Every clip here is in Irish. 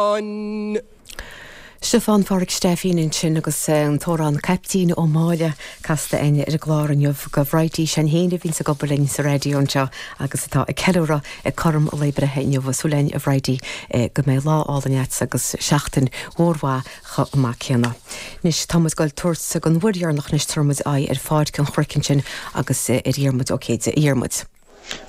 an. Stiofán, Pádraig Stephen ansin agus an t-amhrán Caiptín Ó Máille casta a'inn ar an gclár inniu. Go Bhridie Seáin Féin a bhíonns ag obair linn sa raidió anseo agus atá ag ceiliúradh cothrom a lae breithe inniu, súil a'inn a Bhridie go mbeidh lá álainn a'dsa agus seachtain mhór mhaith chomh maith céanna. Anois tá muid ag dul ag tabhairt don uair dheireanach anois tabharfaidh muid aghaidh ar Pháirc an Chnoic ansin agus ar Dhiarmuid, ok, Dhiarmuid.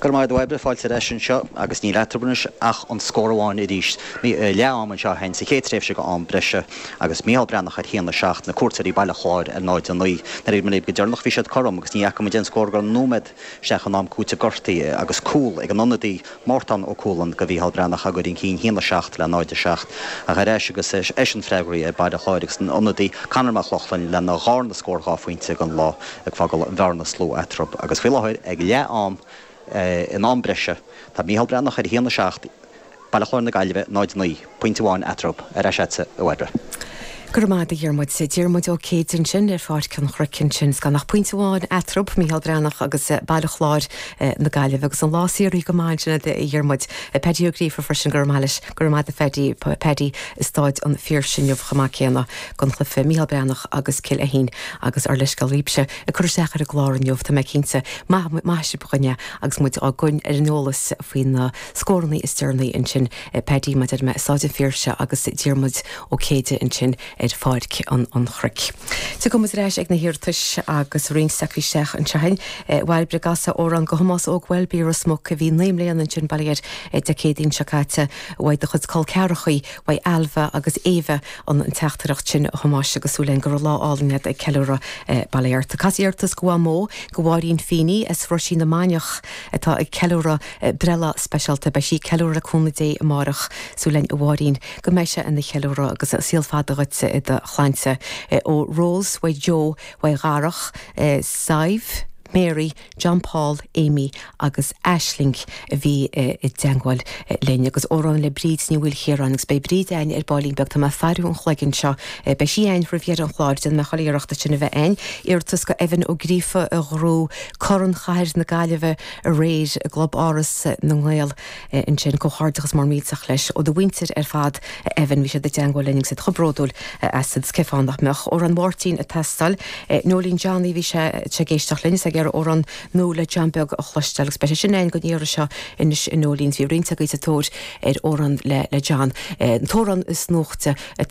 Go raibh maith a'd a Bhairbre, fáilte ar ais anseo, agus níl eatrab anois ach an scór amháin arís, i leath am anseo sa chéad tréimhse go am breise, agus Micheál Breathnach ar a haon a 7, na cuairteoirí Baile Chláir ar 0 9. Nuair a labhair muid go deireanach bhí siad cothrom, agus ní fhaca muid aon scór go nóiméad isteach in am cúitimh gortaithe, agus cúl ag an ionadaí, Mártán Ó Cualann, go Mhícheál Breathnach á gcuir un cinn a haon a 7 le 0 7. Ach ar ais agus é sin freagraithe ag Baile Chláir agus an t-ionadaí, Conor Mac Lochlainn, lena dhárna scór dhá phointe den lá. ag fágáil an bhearna is lú eatarthu agus faoi láthair ag leath am in am breise. Tá Micheál Breathnach ar a haon a seacht, Baile Chláir na Gaillimhe 0 9, pointe amháin eatarthu. Ar ais leatsa, a Bhairbre. Go raibh maith agat, a Dhiarmuid. Diarmuid Ó Céidigh ansin ar Pháirc an Chnoic ansin. Gan ach pointe amháin eatarthu, Micheál Breathnach agus Baile Chláir na Gaillimhe. Agus an lá saothraithe go maith ansin agat, a Dhiarmuid. Paddy Ó Gríofa freisin, go raibh maith agat leis. Go raibh maith agat, a Phaddy. Paddy i Stáid an Phiarsaigh inniu chomh maith céanna. gCluiche Mícheál Breathnach agus Cill Ainnín agus ár leithscéal daoibhse ag cur isteach ar an gclár inniu, tá mé cinnte. Maithfidh sibh dúinne agus muid ag coinneáil ar an eolas faoi na scórannaí is deireanaí ansin, Paddy mar a dúirt mé i Stáid an Phiarsaigh agus Diarmuid Ó Céide ansin ar Pháirc an Chnoic. Tiocfaidh muid ar ais ag na hiarratais agus roinnt acu isteach anseo a'inn. Bairbre, cas amhrán go Thomás Óg Welby i Ros Muc a bhí naoi mbliana ansin, bail ó Dhia air, Dé Céadaoin seo caite. Uaidh do chuid col ceathrachaí, uaidh Ailbhe agus Éabha. an teachtaireacht sin a Thomáis agus súil againn go raibh lá álainn agat ag ceiliúradh bail ó Dhia ort. Cas iarratas go Mhamó go Mháirín Feeney as Roisín na Mainiach atá ag ceiliúradh breithlá speisialta. Beidh sí ag ceiliúradh le cúnamh Dé amárach. Súil againn a Mháirín go mbeidh sé ina cheiliúradh agus saol fada dhuit i do shláinte. Ó Rose, Mhaigh Eo, Mhaigh Dharach, Sadhbh, Mary, John Paul, Amy agus Aisling a bhí i dteangmháil linn, agus amhrán le Bríd Ní Mhaoilchiaráin, agus beidh Bríd a'ainn ar ball linn beag, tá mé a' faireadh an chloig anseo, beidh sí a'ainn roimh dheireadh an chláir, déanfaidh mé chuile iarracht í sin a bheith a'ainn. Iarratas go Evan Ó Gríofa a ghrú Corn Chathair na Gaillimhe aréir i gClub Áras na nGael. Ansin, comhghairdeachas mór millteach leis ó do mhuintir ar fad, a Evan, bhí siad i dteangmháil linn agus iad chomh bródúil asad cén fáth nach mbeadh. Amhrán Mháirtín ag teastáil. Noeleen Johnny, bhí sí ag éisteacht linn is ag iarraidh amhrán nua le John Beag a chloisteáil agus beidh sé sin againn go n-iarraidh seo anois a Noeleen, bhí roinnt roimhe sa tóir ar amhrán le John. An t-amhrán is nuachte atá